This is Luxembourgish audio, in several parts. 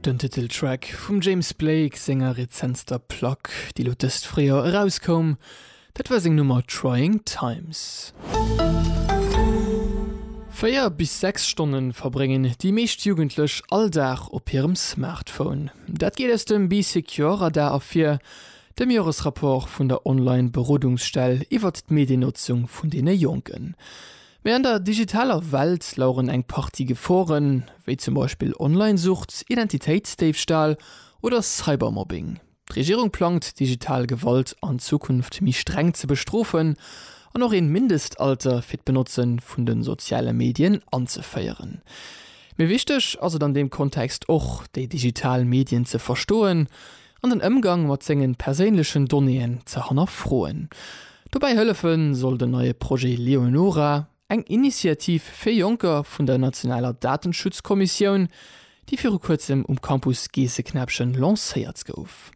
Den Titeltrack vum James Blake senger rezentster Plack, déi lo dëst Fréijoer erauskoum, dat war seng Nummer Trying Times. Véier bis sechs Stonne verbréngen déi meescht Jugendlech all Dag op hirem Smartphone. Dat geet aus dem Be Secure Radar ervir, dem Joresrapport vun der Online-Berodungsstell iwwert d'Mediennotzung vun deene Jonken. Mee an der digitaler Welt laueren eng Partie Geforen, wéi zum Beispill Online-Sucht, Identitéitsdéifstahl oder Cybermobbing. D'Regierung plangt, digital Gewalt an Zukunft méi streng ze bestrofen an och een Mindestalter fir d'Benotze vun den soziale Medien anzeféieren. Mee wichteg ass et an deem Kontext och, déi digital Medien ze verstoen an den Ëmgang mat sengen perséinlechen Donnéeën ze hannerfroen. Dobäi hëllefen soll den neie Projet Leonora, eng Initiativ fir Jonker vun der nationaler Datenschutzkommissioun, déi viru kuerzem um Campus Geesseknäppchen lancéiert gouf.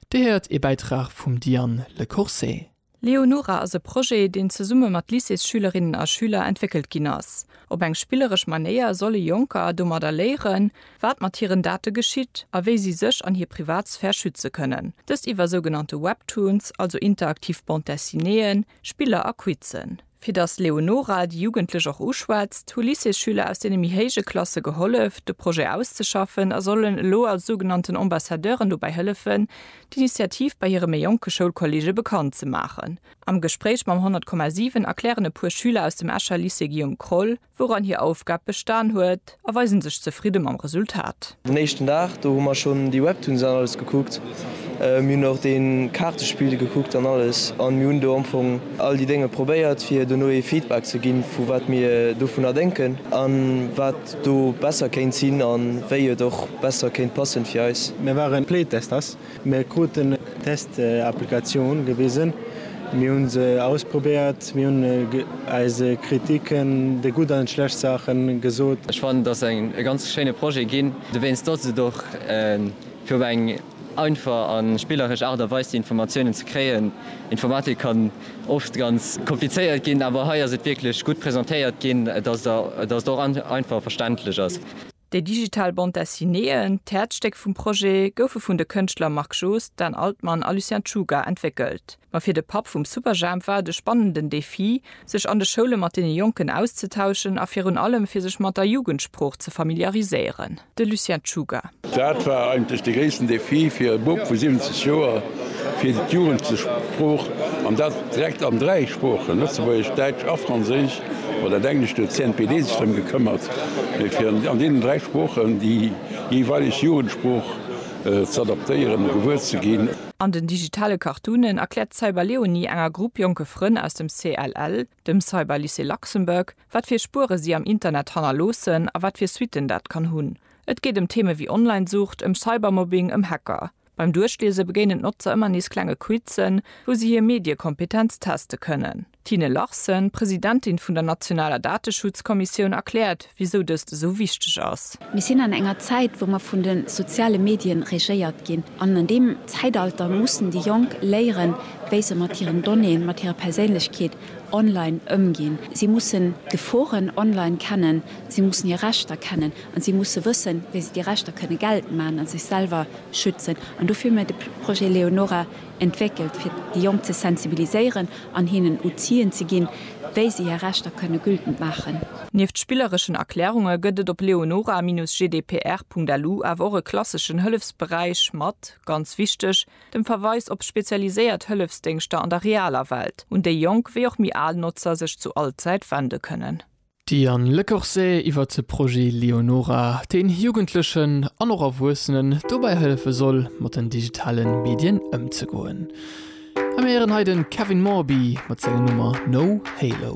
Dir héiert ee Bäitrag vum Diane Lecourcey. Leonora ass e Projet, deen zesumme mat Lycéesschülerinnen a schüler entwéckelt ginn ass. Op eng spilleresch Manéier solle Jonker domadder léieren, wat mat hiren Date geschitt a wéi si sech an hir Privatsphär schütze kënnen. Dëst iwwer sougenannte Webtoons, also interaktiv Bande-dessinéeën, Spiller a Quizzen. Fir datt d'Leonora déi Jugendlech och uschwätzt, hu Lycéesschüler aus deene méi héije Klasse gehollef, de Projet auszeschaffen a sollen elo als sougenannten Ambassadeuren dobäi hëllefen, d'Initiativ bei hire méi jonke Schoulkolleege bekannt ze maachen. Am Gespréich mam 100,7 erklären e puer Schüler aus dem Escher Lycée Guillaume Kroll, wouran hir Aufgab bestan huet, a weisen sech zefridde mam Resultat. Den éischten Dag, do hu mer schonn déi Webtoons an alles gekuckt. Mir hunn och dee Kaartespill gekuckt an alles a mir hunn do am Fong all déi Dénge probéiert, fir dono ee Feedback ze ginn, vu wat mir dovunner denken a wat do besser kéint sinn a wéi et och besser kéint passen fir eis. Mir waren Playtesters, Mir kruten d'Test-Applikatioun gewisen, mir hu se ausprobéiert, mir hunn eis Kritiken, déi gutt an déi schlecht Saachen, gesot. Ech fannen, et ass e ganz schéine Projet ginn, dowéinst datt et och fir op eng einfach a spilleresch Aart a Weis déi Informatiounen ze kréien. Informatik kann oft ganz komplizéiert ginn, awer hei ass et wierklech gutt presentéiert ginn, datt et och einfach a verständlech ass. Déi digital Bande Dessineeën, d'Häerzstéck vum Projet, goufe vun de Kënschtler Marc Joost, Dan Altman a Lucien Czuga entwéckelt. Ma fir de Papp vum Superjhemp war et e spannenden Defi, sech an de Schoule mat deene Jonken auszetauschen a virun allem fir sech mat der Jugendsprooch ze familiariséieren. De Lucien Czuga. Dat war eigentlech de gréissten Defi fir e Bub vu 70 Joer, fir d'Jugendsprooch, an dat direkt an dräi Sproochen, Lëtzebuergesch, Däitsch a Franséisch, Mat dat Englescht huet d'CNPD sech drëm gekëmmert, fir an deenen dräi Sproochen déi jeeweileg Jugendsprooch z'adaptéieren a gewuer ze ginn. An den digitale Cartoonen erkläert d'Cyberleonie enger Grupp jonke Frënn aus dem CLL, dem Cyberlycée Luxembourg, wat fir Spuere si am Internet hannerloossen a wat fir Suitten dat kann hunn. Et geet ëm Theeme wéi Online-Sucht, ëm Cybermobbing, ëm Hacker. Beim Duerchliese begéinen d'Notzer ëmmer nees klenge Quizzen, wou si hir Mediekompetenz teste kënnen. D'Tine Larsen, Presidentin vun der nationaler Dateschutzkommissioun, erkläert, wisou dëst esou wichteg ass. Mir sinn an enger Zäit, wou mer vun de soziale Medien regéiert ginn. An an deem Zäitalter mussen déi Jonk léieren, wéi se mat hiren Donnéeën, mat hirer Perséinlechkeet online ëmginn. Si mussen d'Geforen online kennen, si mussen hir Rechter kennen an si musse wëssen, wéi se déi Rechter kënne geltend maachen a sech selwer schützen. An dofir hu mir de Projet Leonora Entwéckelt, fir déi Jonk ze sensibiliséieren an hinnen Outill'en ze ginn, wéi se hir Rechter kënne gültend maachen. Nieft spillereschen Erklärunge gëtt et op leonora-gdpr.lu awer och e klasseschen Hëllefsberäich mat, ganz wichteg, dem Verweis op spezialiséiert Hëllefsdéngschter an der realer Welt, un déi jonk wéi och méi al Notzer sech zu all Zäit wende kënnen. D'Diane Lecorse iwwert de Projet Leonora, deen Jugendlechen an och Erwuessenen dobäi hëllefe soll, mat den digitale Medien ëmzegoen. A mir héieren hei de Kevin Morby mat senger Nummer No Halo.